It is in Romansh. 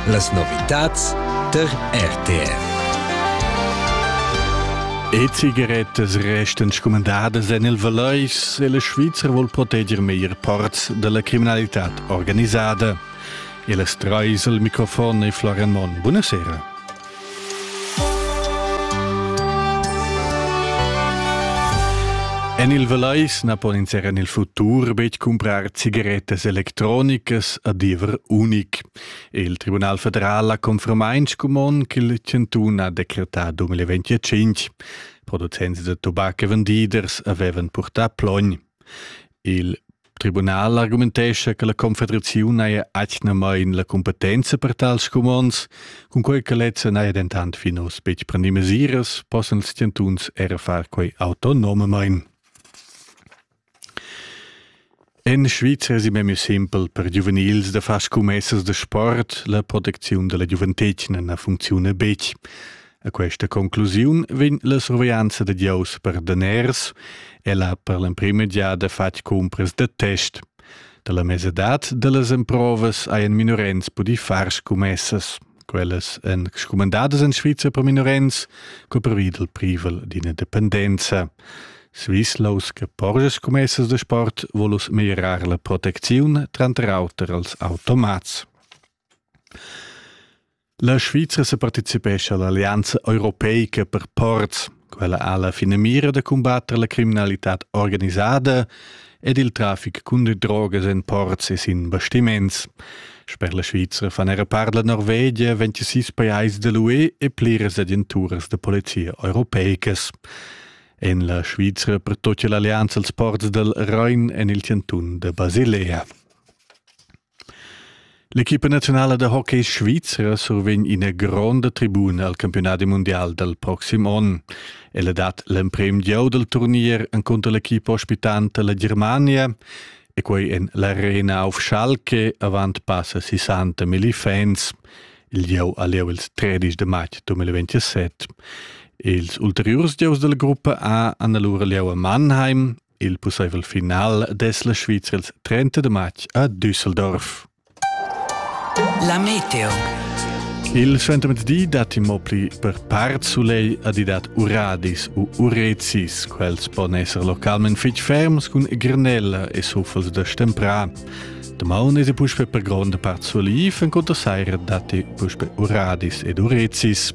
Las novitads der RTR. E cigarettas resten scumandadas en il Valeis e la Svizra vuol proteger meglier parts della criminalità organisada. E las treis al microfon e Florian Monn. Buonasera. En il Velais na pon ins er en il futur betg cumprar cigarettas electronicas a diever unic. Il Tribunal federal ha confermain scumon ch'il chantun ha decretà 2025. Producents da tubac e vendiders avevan purtà plogn. Il tribunal argumentescha che la Confederaziun haja atgnamain la cumpetenza per tals scumonds, cunquai che lezza n'haja dentant fin oz betg prendì mesiras, possan ils chantuns era far quai autonomamain. En Svizra è memia simpel per giuvenils da far scummessas da sport. La protecziun da la giuventetgna na funcziuna betg. A questa conclusiun vegn la surveglianza da Dieus per daners, ella per l'emprima giada fatg cumpras da test. Da la mesadad da las emprovas hajan minorens pudì far scummessas. Quellas èn scumandadas en Svizra per minorens, co pervi dal privel d'ina dependenza. Swisslaus che porge scommessas da sport volus meglierar la protecziun tranter auter als automats. La Svizra separticipescha all'allianza europeica per ports. Quella ha la finamira da combatter la criminalità organisada ed il traffic cun drogas en ports e sin bastiments. Sper la Svizra fan era part la Norvegia 26 pajais da l'UE e pliras agenturas da polizia europeicas. En la Svizra pertocca l'allianza als ports dal Rhein en il cantun da Basilea. L'equipa naziunala da hockey svizra survegn ina gronda tribuna al campiunadi mundial dal proxim onn. Ella dat l'emprim gieu dal turnier encunter l'equipa ospitanta la Germania e quei en l'arena auf Schalke avant passa 60 milli fans. Il gieu ha lieu il 13 de matg 2027. Ils ulteriurs gieus della gruppa A hanno allora lieu a Mannheim Il pusseivel final dess la Svizra ils 30 de matg a Düsseldorf. La Meteo. Il Di dat immo pli per part sulei adidat uradis u urecis. Quels pon esser localment fitg ferms cun granella e suffels da stempra. De maun es puspe per gronda part soliv, en conto saira date puspe uradis ed urecis.